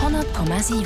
100,7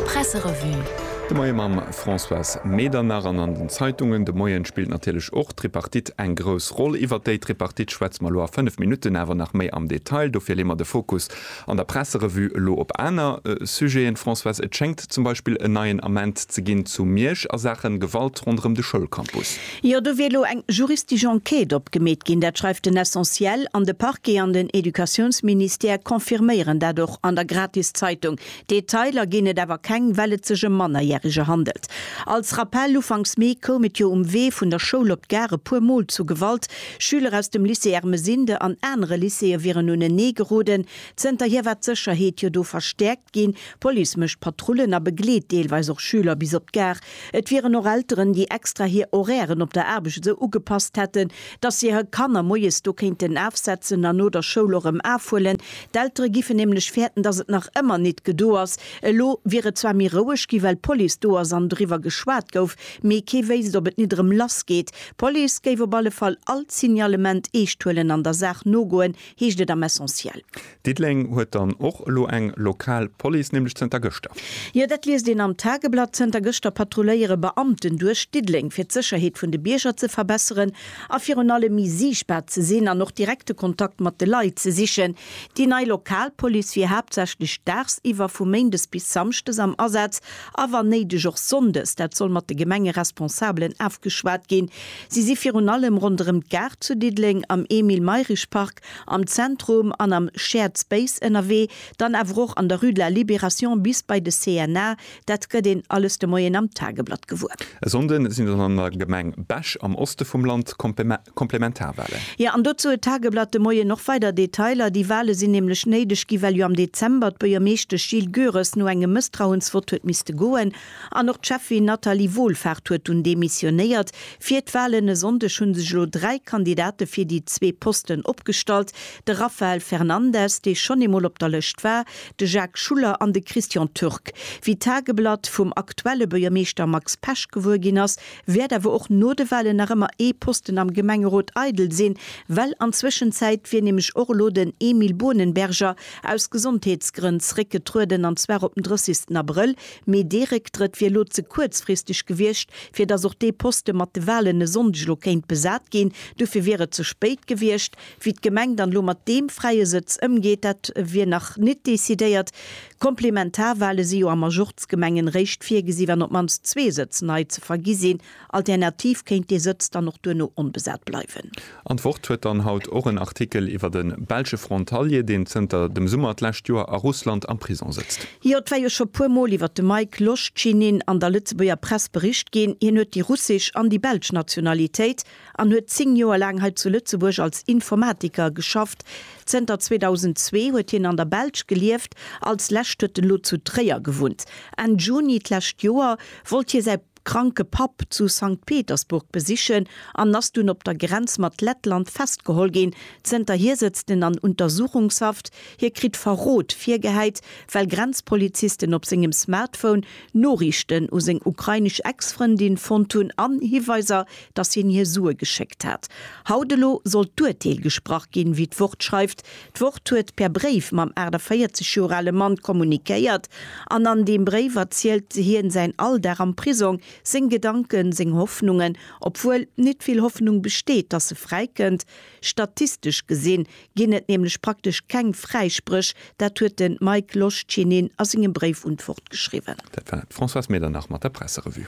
Presserevue. De Moie mam Françoise Medernach. An an den Zeitungen de Moien spillt natierlech och d'Tripartite eng grouss Roll. Iwwert déi Tripartite schwätze mer elo a 5 Minutten awer nach méi am Detail. Dofir leeë mer de Fokus an der Presserevue elo op aner Sujeten. Françoise, et schéngt zum Beispill en neien Ament ze ginn zu Miersch a Saache Gewalt ronderëm de Schoulcampus. Jo, do wier elo eng juristesch Enquête opgemeet ginn, dat schreift den Essentiel, an de Parquet an den Educatiounsministère confirméieren dat och an der Gratiszeitung. Detailer ginn et awer keng, well et sech ëm Mannerjärige handelt. Als Rappell, Ufanks Mee koum et jo um Wee vun der Schoul op d'Gare e puer Mol zu Gewalt. Schüler aus dem Lycée Ermesinde an anere Lycéeë wieren unenee geroden. Zënterhier war d'Sécherheet jo do verstäerkt ginn, d'Police mécht Patrullen a begleet deelweis och Schüler bis op d'Gare. Et wieren och Elteren, déi extra hir Horairen op der Aarbecht esou ugepasst hätten, dass si hir Kanner moies do kéinten afsetzen an no der Schoul och erëm afhuelen. D'Eltere giffen nämlech fäerten, dass et nach ëmmer nit gedo ass. Elo wier et zwar méi roueg gi well d'Police do ass an driwwer geschwat gouf, mee kee wéisst, ob et nit erëm lass geet. D'Police géif op alle Fall all d'Signalement eescht huelen an der Saach nogoen, heescht et am Essentiel. Diddeleng huet dann och elo eng lokal Police, nämlech zënter gëschter. Jo, dat liest een am Tageblatt. Zënter gëschter patrulléiere Beamten duerch Diddeleng, fir d'Sécherheet vun de Bierger ze verbesseren a virun allem méi siichtbar ze sinn an och direkte Kontakt mat de Leit ze sichen. Déi nei lokal Police wier haaptsächlech daagsiwwer, vu méindes bis samschdes, am Asaz a wann néideg och sonndes. Dat soll mat de Gemengeresponsabelen afgeschwat ginn. Si si virun allem ronderëm d'Gare zu Diddeleng, am Emile-Mayrisch-Park, am Zentrum an am Shared Space ënnerwee, dann awer och an der Rue de la Libération bis bei de CNA, dat gëtt een alles de Moien am Tageblatt gewuer. E Sonnde sinn dann an der Gemeng Bech am Oste vum Land d'Komplementarwalen. Jo, an dozou huet d'Tageblatt de Moien och weider Detailer. Déi Wale sinn nämlech néideg ginn, well jo am Dezember d'Buergermeeschtesch Jill Goeres no engem Mësstrauensvott huet misste goen. An och d'Cheffin Nathalie Wohlfahrt huet dunn demissionéiert. Fir d'Walen e Sonndeg hu sech elo dräi Kandidate fir déi zwee Posten opgestallt, de Raphael Fernandes, dee schonn eemol op der Lëscht war, de Jacques Schuller an de Christian Türk. Wéi d'Tageblatt vum aktuelle Buergermeeschter Max Pesch gewuer ginn ass, wäert awer och no de Walen nach ëmmer ee Posten am Gemengerot eidel sinn, well an Zwëschenzäit wier nämlech och elo den Emile Bohnenberger aus Gesondheetsgrënn zréckgetrueden, an zwar op den 30. Abrëll, Mee dee Récktrëtt wier elo ze kuerzfristeg gewiescht, fir datt och dee Poste mat de Walen e Sonndeg elo kéint besat ginn. Dofir wier et ze spéit gewiescht. Wéi d'Gemeng dann elo mat deem fräie Sëtz ëmgeet, dat wier nach nit decidéiert. Komplementarwale si jo a Majorzgemengen réischt virgesi wann op d'mannst zwee Sëtz nei ze vergi sinn. Alternativ kéint dee Sëtz dann och duerno onbesat bleiwen. An d'Wort huet dann haut och en Artikel iwwert e belsche Frontalier, deen zënter dem Summer d'lescht Joer a Russland am Prisong sëtzt. Jo, et war jo scho puer Mol iwwert de Mike Loschinin an der Lëtzebuerger Press bericht ginn. Hien huet déi russesch an déi belsch Nationalitéit an huet 10 Joer laang hei zu Lëtzebuerg als Informatiker geschafft. Zënter 2002 huet hien an der Belsch gelieft, als lescht huet en elo zu Tréier gewunnt. Enn Juni d'lescht Joer wollt hie säi. kranke Papp zu Sankt Petersburg besichen an ass dunn op der Grenz mat Lettland festgeholl ginn. Zënterhier sëtzt en an Untersuchungshaft. Hie kritt Verrot virgehäit, well Grenzpolizisten op sengem Smartphone Noriichten u seng ukrainesch Ex-Frëndin fonnt hunn an Hiweiser, datt hien hir Sue geschéckt hat. Haut elo soll d'Urteel gesprach ginn, wéi d'Wort schreift. D'Wort huet per Bréif mam 48 Joer ale Mann kommunikéiert an an deem Bréif erzielt hien säin Alldag am Prisong, seng Gedanken, seng Hoffnungen, obwuel nit vill Hoffnung besteet, dass e fräikënnt. Statistesch gesinn ginn et nämlech praktesch keng Fräispréch, dat huet de Mike Loschinin a sengem Bréif un d'Wort geschriwwen. Dat war d'Françoise Medernach mat der Presserevue.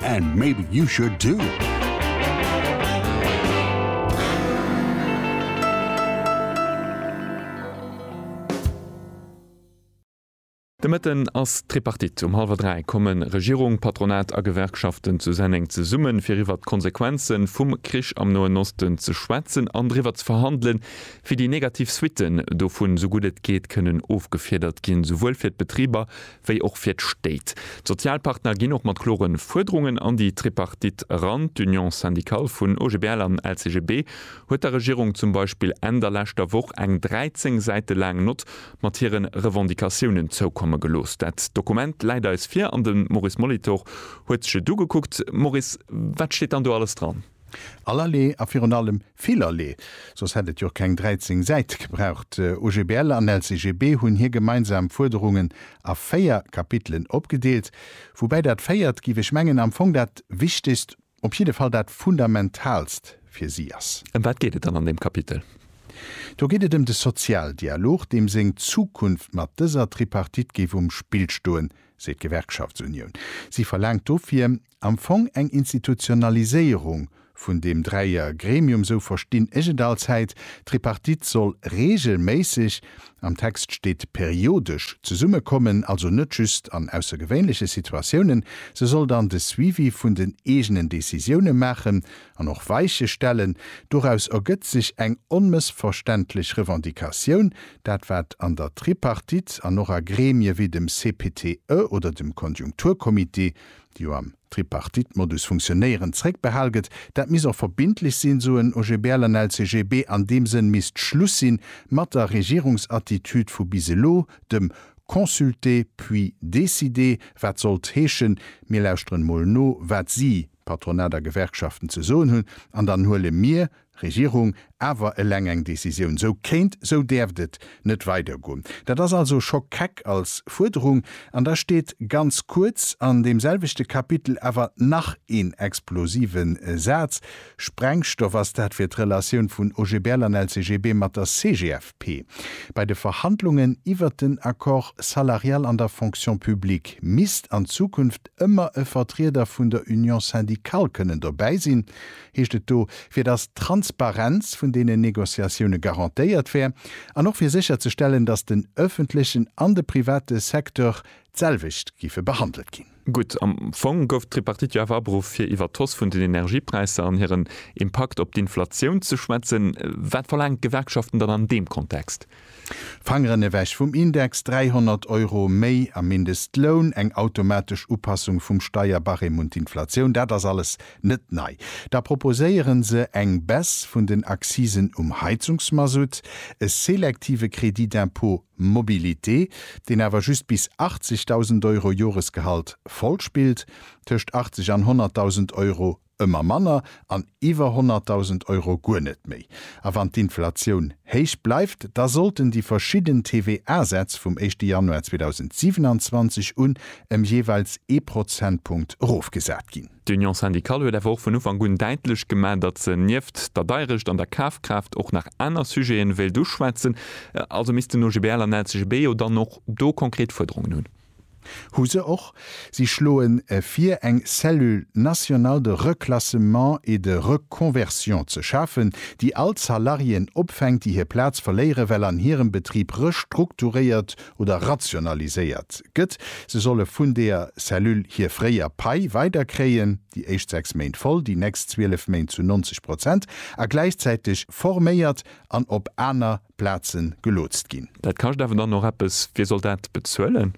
And maybe you should too. De Mëtten ass d'Tripartite. Um hallwer 3 komme Regierung, Patronat a Gewerkschaften zu Senneng zesummen, fir iwwert d'Konsequenze vum Krich am Noen Osten ze schwätzen an driwwer ze verhandelen, wéi déi negativ Suitten dovun, sou gutt et geet, kënnen ofgefiedert ginn, souwuel fir d'Betriber wéi och fir d'Stéit. D'Sozialpartner ginn och mat klore Fuerderungen an déi Tripartite eran. D'Union syndicale vun OGBL an LCGB huet der Regierung zum Beispill Enn der leschter Woch eng 13 Säite laang Nott mat hire Revendicatiounen zoukomme gelooss. Dat Dokument läit eis vir an de Maurice Molitor huet sech et ugekuckt. Maurice, wat steet dann do alles dran? Allerlee a virun allem villerlee, soss hätt et jo keng 13 Säit gebraucht. OGBL an LCGB hunn hir gemeinsam Fuerderungen a véier Kapitelen opgedeelt, woubäi dat véiert, géif ech mengen, am Fong dat Wichtegst, op jidde Fall dat Fundamentalst fir si ass. Ëm wat geet et dann an deem Kapitel? Do geet et ëm de Sozialdialog, deem seng Zukunft mat dëser Tripartite géif um Spill stoen, seet d'Gewerkschaftsunioun. Si verlaangt dofir, am Fong eng Institutionaliséierung vun deem Dräier Gremium, sou verstinn ech et allzäit. D'Tripartite soll regelméisseg, am Text steet periodesch, zesumme kommen, also net just an aussergewéinleche Situatiounen. Se soll dann de Suivi vun den eegenen Décisioune maachen an och Weiche stellen. Doraus ergëtt sech eng onmëssverständlech Revendicatioun, dat wat an der Tripartite an och a Gremie wéi dem CPTE oder dem Konjunkturcomité, déi jo am Tripartite-Modus funktionéieren, zréckbehal gëtt. Dat misst och verbindlech sinn, soen OGBL an LCGB. An deem Sënn misst Schluss si mat der Regierungsattitüd vu bis elo, dem consulter puis décider, wat sollt heeschen, mir lauschteren emol no, wat si, Patronat a Gewerkschaften, ze soen hunn, an dann huele mir, Regierung, awer eleng eng Décisioun, sou kéint, sou däerft et net weidergoen. Dat ass also scho keck als Fuerderung. An da steet ganz kuerz an deem selwechte Kapitel awer nach een explosive Saz, Sprengstoff, ass dat fir d'Relatioun vun OGBL an LCGB mat der CGFP bei de Verhandlungen iwwert den Accord salarial an der Fonction publique misst an Zukunft ëmmer e Vertrieder vun der Union syndicale kënnen dobäi sinn. heescht et do, fir datt d'Transparenz vun deenen Négociatioune garantéiert wär an och fir sécher ze stellen, datt den öffentlechen an de private Secteur d'selwecht géife behandelt ginn. Gutt, am Fong gouf d'Tripartite jo awer aberuff, fir iwwer d'Hausse vun den Energiepräisser an hiren Impakt op d'Inflatioun ze schwätzen. Wat verlaangen d'Gewerkschaften dann an deem Kontext? Fangeren ewech vum Index, 300 Euro méi am Mindestloun, eng automatesch Upassung vum Steierbarème un d'Inflatioun, dat ass alles net nei. Da proposéieren se eng Baisse vun den Accisen um Heizungsmasutt, e selektive Crédit d'impôt mobilité, deen awer just bis 80.000 Euro Joresgehalt voll spillt, tëscht 80 an 100.000 Euro ëmmer manner an iwwer 100.000 Euro guer net méi. A wann d'Inflatioun héich bleift, da sollten déi verschidden TVA-Sätz vum éischte Januar 2027 un ëm jeeweils ee Prozentpunkt erofgesat ginn. D'Union syndicale huet awer och vun Ufank un däitlech gemaach, datt se nieft der Deierecht an der Kafkraaft och nach aner Sujete wéilt uschwätzen. Also misst den OGBL an LCGB jo dann och do konkret Fuerderungen hunn. Hu se och. Si schloe vir, eng Cellule nationale de reclassement et de reconversion ze schafen, déi all d'Salariéen opfänkt, déi hir Plaz verléiere well an hirem Betrib restrukturéiert oder rationaliséiert gëtt. Se solle vun deeër Cellule hir fréier Pai weiderkréien, déi éischt sechs Méint voll, déi nächst zwielef Méint zu 90 Prozent a gläichzäiteg forméiert an op aner Plaze gelootst ginn. Dat kascht awer dann och eppes. Wie soll dat bezuelen?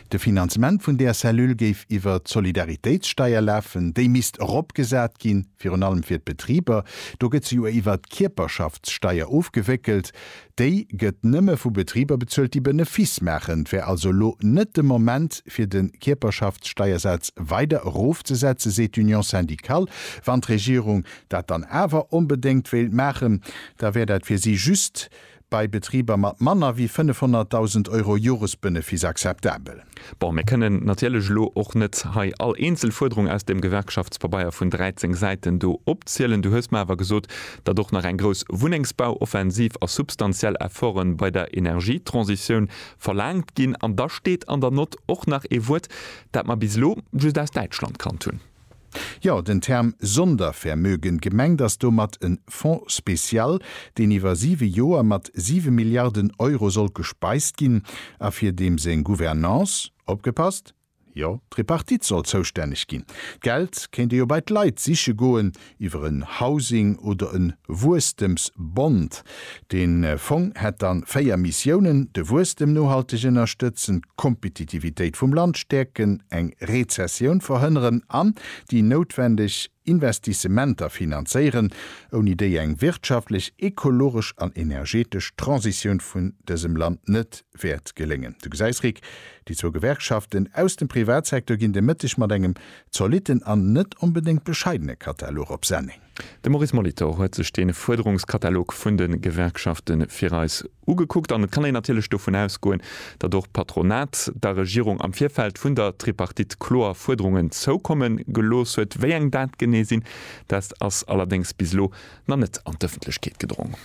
De Finanzement vun där Cellule géif iwwer d'Solidaritéitssteier lafen. Déi misst eropgesat ginn, virun allem fir d'Betriber. Do gëtt se jo iwwer d'Kierperschaftssteier ofgewéckelt. Déi gëtt nëmme vu Betriber bezuelt, déi Benefiss maachen. Et wär also elo net de Moment, fir de Kierperschaftssteiersaz weider erofzesetzen, seet d'Union syndicale, wann d'Regierung dat dann awer onbedéngt wéilt maachen, da wär dat fir si just bei Betriber mat manner wéi 500.000 Euro Joresbenefiss akzeptabel. Bon, mir kënnen natierlech elo och net hei all eenzel Fuerderung aus deem Gewerkschaftspabeier vun 13 Säiten do opzielen. Du hues mer awer gesot, datt och nach eng grouss Wunnengsbauoffensiv a substantiell Efforte bei der Energietransitioun verlaangt ginn. An da steet an der Nott och nach ee Wuert, dat mer bis elo just aus Däitschland kannt hunn. Jo, den Term Sondervermögen, gemengt ass domat e Fonds spécial, deen iwwer siwe Joer mat siwe Milliarden Euro sollt gespeist ginn a fir deem seng Gouvernance, opgepasst, jo, d'Tripartite soll zoustänneg ginn. D'Geld kéint ee jo bei d'Leit siche goen, iwwer en Housing oder e Wuesstems-Bond, De Fong hätt dann véier Missiounen, de Wuesstem nohalteg ënnerstëtzen, d'Kompetitivitéit vum Land stäerken, eng Rezessioun verhënneren an déi noutwendeg Investissementer finanzéieren, ouni déi eng wirtschaftlech, ekologesch an energetesch Transitioun vun dësem Land net wäert geléngen. Du gesäis, Rick, déi zwou Gewerkschaften aus dem Privatsecteur ginn de Mëtteg mat engem zolitten an net onbedéngt bescheidene Katalog op Sending. De Maurice Molitor huet sech dee Fuerderungskatalog vun de Gewerkschafte fir eis ugekuckt an et kann een natierlech dovun ausgoen, datt och d'Patronat der Regierung am Virfeld vun der Tripartite kloer Fuerderungen zoukomme gelooss huet. Wéi eng dat genee sinn, dat ass allerdéngs bis elo nach net an d'Ëffentlechkeet gedrong.